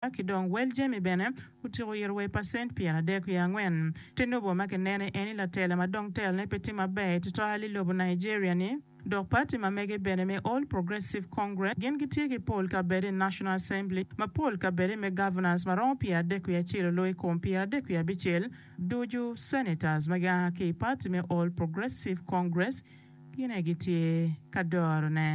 Ka ki dong wel jami bene otyeko yito wa i pacent pyeradek wiye angwen. Te lobo ma ki nene eni latela ma dong telo ne pe tye maber tutual i lobo Nigeria ni. Dok party ma mege bene me All Progressive Congress gin gi tye ki pol kabede i National Assembly ma pol kabede me Governors ma romo pyeradek wiye acel olo i kom pyeradek wiye abicel ducu. Senators ma gia ki i party me All Progressive Congress gin aye gi tye ka doro ne.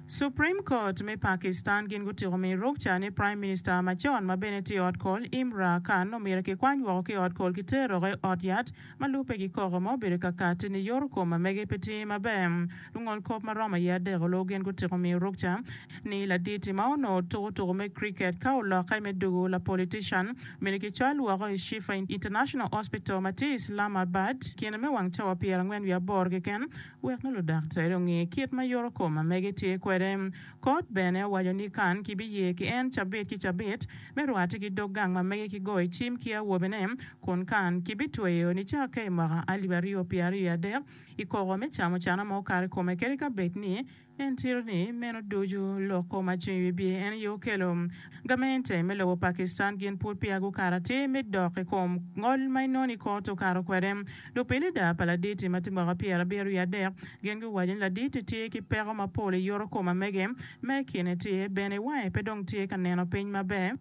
Supreme Court me Pakistan gin gutyeko miyo rukca ni Prime Minister macon ma bene tye i ot kol Imra Khan omyero kikwany woko ki i ot kol ki teroke i ot yat ma lubbe ki koko ma obedo kakati ni yoto kom ma mege pe tye maber. Lungol kop ma romo aye adek oloo gin gutyeko miyo rukca ni laditi ma onongo tuko tuko me Cricket ka olokke me dugo la politician omyero kicwal woko i Shifa International Hospital ma tye i Islamabad kine me wang cawa pyerangwen wiye aboro keken Wek ludaktere onge kit ma yorokom ma mege tye kwede, kot bene owaco ni Kan kibiye ki en cabit ki cabit me rwate ki dog gang ma mege ki goyo cim ki awobene, kun Kan kibitweyo nicake i mwaka alip aryo pyeraryo adek i koko me camucana ma okato i kome kadi ka bed ni En ciro ni meno ducu lok kom acung i wi bye en aye okelo. Gamente me lobo Pakistan gin pud peya gukato atir me dok i kom ngol ma inoni i kor tukato kwede. Lupilida pa laditi ma tye mwaka pyera abiro wiye adek gin guwaco ni laditi tye ki peko mapol i yoto kom amege ma i kine tye bene wange pe dong tye ka neno piny maber.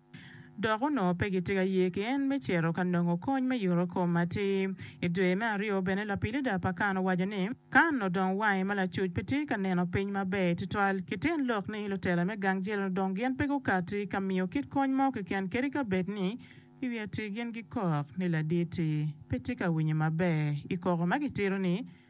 dok onongo pe gitye ka ye ki en me cito ka nongo kony me yuto kom atir. I dwe me aryo bene lapilida pa Kan owaco ni, Kan odong wange ma lacuc pe tye ka neno piny maber tutwal, ki tyen lok ni lutela me gang jel odong gin pe gukatti ka miyo kit kony mo keken kadi ka bed ni i wi atir gin gikok ni laditi pe tye ka winyo maber i koko ma gitito ni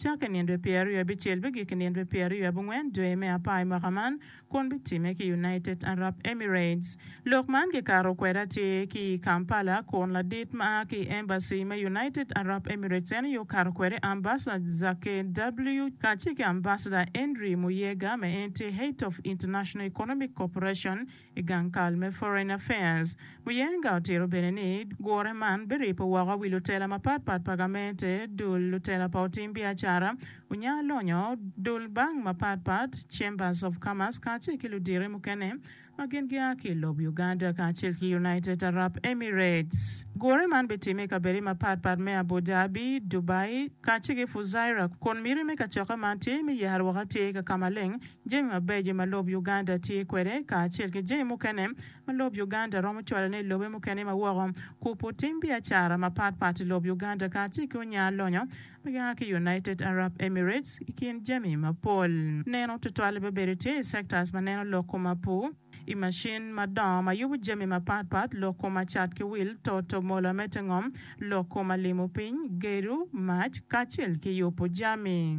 Cakke nino dwe pyeraryo abicel bigik i nino dwe pyeraryo abongwen dwe me apar i mwaka man, kun bitime ki United Arab Emirates. Lok man kikato kwede atir ki i Kampala kun ladit ma a ki i embassy me United Arab Emirates en aye okato kwede Ambassador Zake W. kacel ki Ambassador Henry Muyega me Entee Heithof International Economic Corporation, I gang kal me Foreign Affairs, Muyenga otito bene ni gure man biripo woko wi lutela mapat pat pa gamente, dul lutela pa otim biacara, unya lonyo, dul bank mapat pat, Chambers of Commerce kacel ki ludite mukene ma gin gia ki i lob Uganda kacel ki United Arab Emirates. Gure man bitimme i kabede mapat pat me Abu Dhabi, Dubai kacel ki Fujairah kun miti me kacokke man tye me yaro woko atir i kaka maleng Jami mabeco ma lob Uganda tye kwede kacel ki jami mukene ma lob Uganda romo cwalone i lobe mukene ma woko, kupu tim biacara mapat pat i lob Uganda kacel ki onya lonyo ma gia ki United Arab Emirates i kin jami mapol. Neno tutwal bene bedo tye i sectors ma neno lok kuma pu i macin madongo ma yubu jami mapat pat, lok kuma cat ki wil, toto, mola me te ngom, lok kuma limo piny, gedo, mac, kacel ki yubu jami.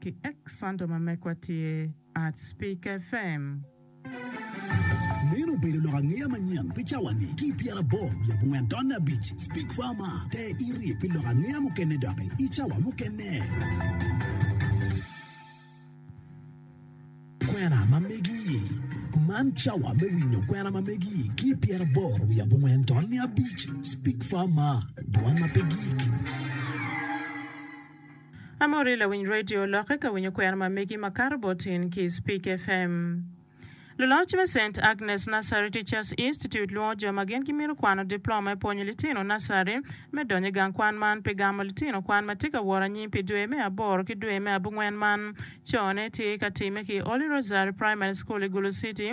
ki Exxonto ma mekwa tye ArtSpeakerFm. Meno obedo lok angeya manyen pi cawa-ni ki i pyera aboro lub ongwen tonne abic. Speak Far Mar te iri pi lok angeya mukene doki i cawa mukene. Kwena ma megi i Man cawa me winyo kwena ma megi ki i pyera aboro lub ongwen tonne abic. Speak Far Mar dwan ma pe gik. Amuri lawiny radio lokke ka winyo kwena ma megi ma kato bot in ki i Speak FM. Luloc me Saint Agnes Nursery Teachers Institute lwongo jo ma gin gimito kwano diploma me pwonyo litino nursery me donyo i gang kwan man pi gamo litino kwan ma tye ka woro anyim pi dwe me aboro ki dwe me abungwen man cone tye ka timme ki Holy Rosary Primary School i Gulu City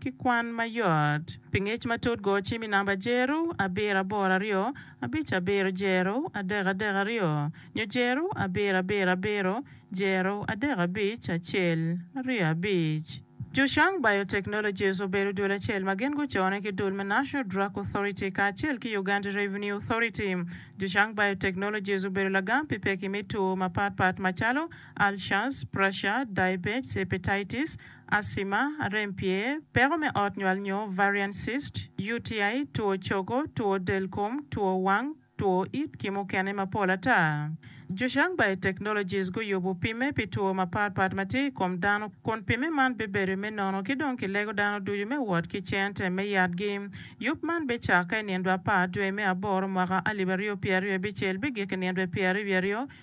ki kwan ma yot. Pi ngec matut go cim i namba jeru abiro aboro aryo abic abiro jeru adek adek aryo nyo jeru abiro abiro abiro jeru adek abic acel aryo abic. Zhushang Biotechnologies obedo dul acel ma gin gucone ki dul me National Drug Authority kacel ki Uganda Revenue Authority. Zhushang Biotechnologies obedo lagam pi pekki me two mapatpat macalo Ulcers, Pressure, Diabetes, Hepatitis, asima, rem pye, peko me ot nywal nyo varian cyst, UTI, two cogo, two del kom, two wang, two it ki mukene mapol ata. Zhuxiang Biotechnologies guyubu pimme pi two mapat pat ma tye i kom dano kun pimme man bibedo me nono ki dong kilego dano ducu me wot ki cente me yatgi. Yub man bicakke i nindwa apar dwe me aboro mwaka alip aryo pyeraryo bicel bigik i nindwe pyeraryo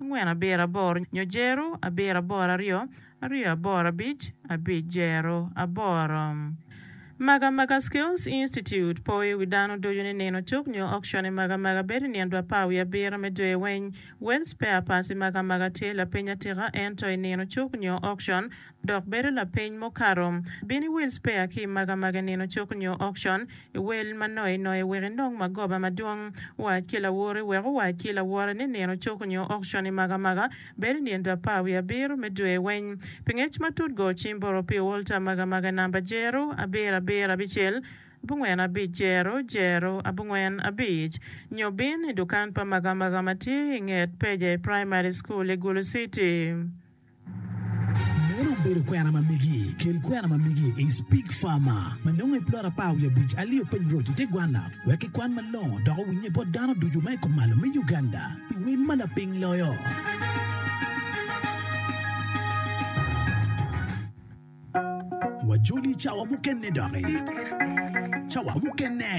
angwen abiro aboro nyo jero abiro aboro aryo aryo aboro abic abic jero aboro Maga Maga Skills Institute po i wi dano ducu ni nino cuk nyo auction i Maga Maga bedo i nino dwa par wiye abiro me dwe weng Well spare parts i Maga Maga tye lapeny atika ento i nino cuk nyo auction dok bedo lapeny mukato. Bin iwil spea ki i magamaga nino cuk nyo okcon, iwel ma noye noye wek inong magoba madwong. Wac ki lawori wek owac ki lawore ni nino cuk nyo okcon i magamaga bedo i nino apar wiye abiro me dwe weng. Pi ngec matut go cim boro pi olta magamaga namba jero abiro abiro abicel abongwen abic jero jero abongwen abic nyo bin i dukan pa magamaga ma tye i nget peja i Primary School i Gulu City. Meno obedo kwena ma megi. Kel kwena ma megi i Speak Farmer ma nongo i plot apar wiye abic. Alio piny roc i te gwanna wek kikwan malongo dok owinnye bot dano ducu ma i kumalo me Uganda i wel ma lapiny loyo. Wajoli cawa mukene doki. Cawa mukene.